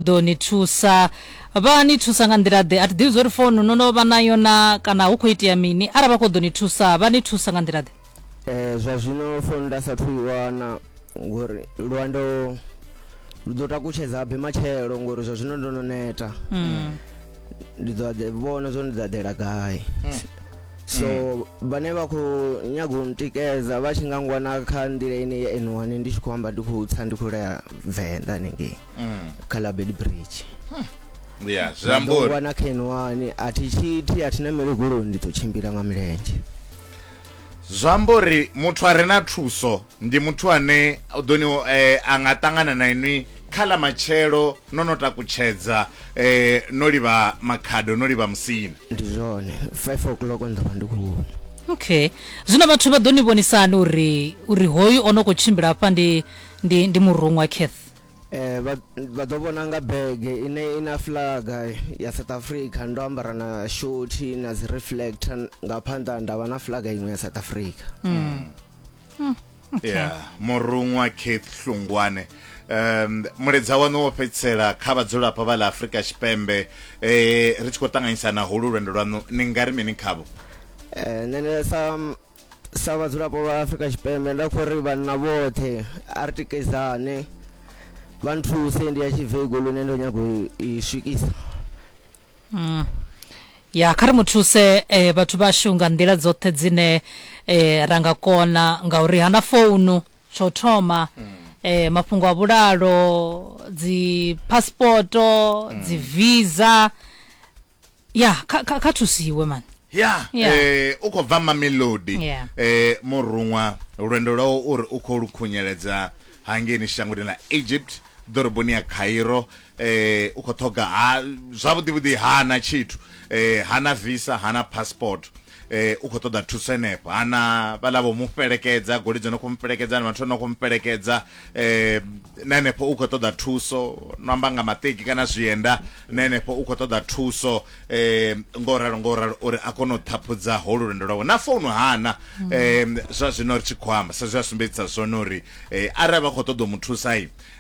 ḓo ni thusa vha ni thusa nga nḓila ḓe a thi ḓivhi zwori founu no no vha nayo na kana hu khou itea mini arali vha khou ḓo ni thusa vha ni thusa nga nḓila ḓe um zwa zwino founu nda sathu i wana ngori lwendo lu ḓo takutshedza be matshelo ngori zwa zwino ndo no neta mm. ndi ḓo ḓe vhona zwo ndi ḓa ḓela gai mm. so mm. vhane vha khou nyaga u ntikedza vha tshi nga ngwana kha nḓila ine ya n1 ndi tshi khou amba ndi khou tsa ndi khou lea venḓa nengei mm. kha label bridge ya zamburi wana khen wani a thi tshiti a thi na mele goloi ndi ḓo tshimbila nga milenzhe zwi amba uri muthu a re na thuso ndi muthu ane u ḓo ni eh, a nga ṱangana na inwi kha ḽa matshelo no no takutshedza eh, no livha makhado no livha musini ndi zwone five o'clock nda vha ndi khou okay zwino vhathu vha ḓo ni vhonisani uri uri hoyu o no khou tshimbila afha ndi ndi ndi muruṅwa cath Eh, vha vha ḓo vhona nga bege ine i na flaga ya south africa ndo ambara na shoti na dzi reflector nga phanḓa nda vha na flaga iṅwe ya south africa yeah muruṅwa keith hlungwane um muledza wanu wo fhedzisela kha vhadzulapo vha ḽa afurika tshipembe eh ri tshi khou ṱanganyisa na holu lwendo lwanu ni nga ri mini khavho Eh, nṋe sa sa vhadzulapo vha afrika tshipembe nda khou ri vhanna vhoṱhe a ri tikedzane vha nthuse ndi ya tshivego lune ndo nyago i swikisa mm. ya kha ri mu thuse eh, vhathu vhashu nga nḓila dzoṱhe dzine eh, ra nga kona ngauri hana founu tsho thoma mm. eh, mafhungo a vhulalo dzi passporto mm. dzi visa ya kha kha kha thusiwe man ya Yeah. eh, u khou bva mamelodi Yeah. eh, muruṅwa lwendo lwawo u ri u khou lu khunyeledza hangeni shangoni ḽa egypt ḓoroboni ya cairo eh, u khou ṱhoga ha zwavhuḓivhuḓi hana tshithu eh, hana visa hana passport eh u khou ṱoḓa thuso henefho hana vhala vho mu fhelekedza goli dzo no khou mu fhelekedza na vhathu no khou mu fhelekedza eh na henefho u khou ṱoḓa thuso no amba nga maṱeki kana zwienda na henefho u khou ṱoḓa thuso eh ngo ralo ngo ralo uri a kone u ṱhaphudza ho lulendo lwawe na founu hana mm. eh zwa zwino ri tshi khou amba sa zwa sumbedzisa zwone uri eh arali vha khou ṱoḓa u mu thusa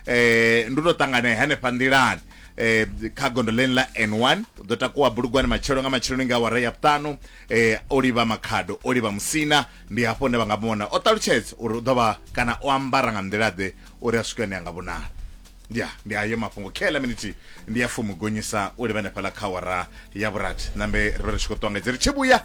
eh ndi to ṱangana hanefha nḓilani eh, kha gondo ḽeni ḽa n1 u ḓo takuwa bulugwani matshelo nga matsheloni nga awara ya vhuṱanu eh, o livha makhado o livha musina ndi hafho hune vha nga vhona o ṱalutshedza uri u ḓo vha kana o ambara nga nḓila-ḓe uri a swike hune a nga vhonala ya ndi ayo mafhungo khe ḽa minithi ndi ya fumi gonyisa u livha hanefhaḽa kha awara ya vhurathi nambe ri vha ri tshi khou ṱuwa nga dzi ri tshi vhuya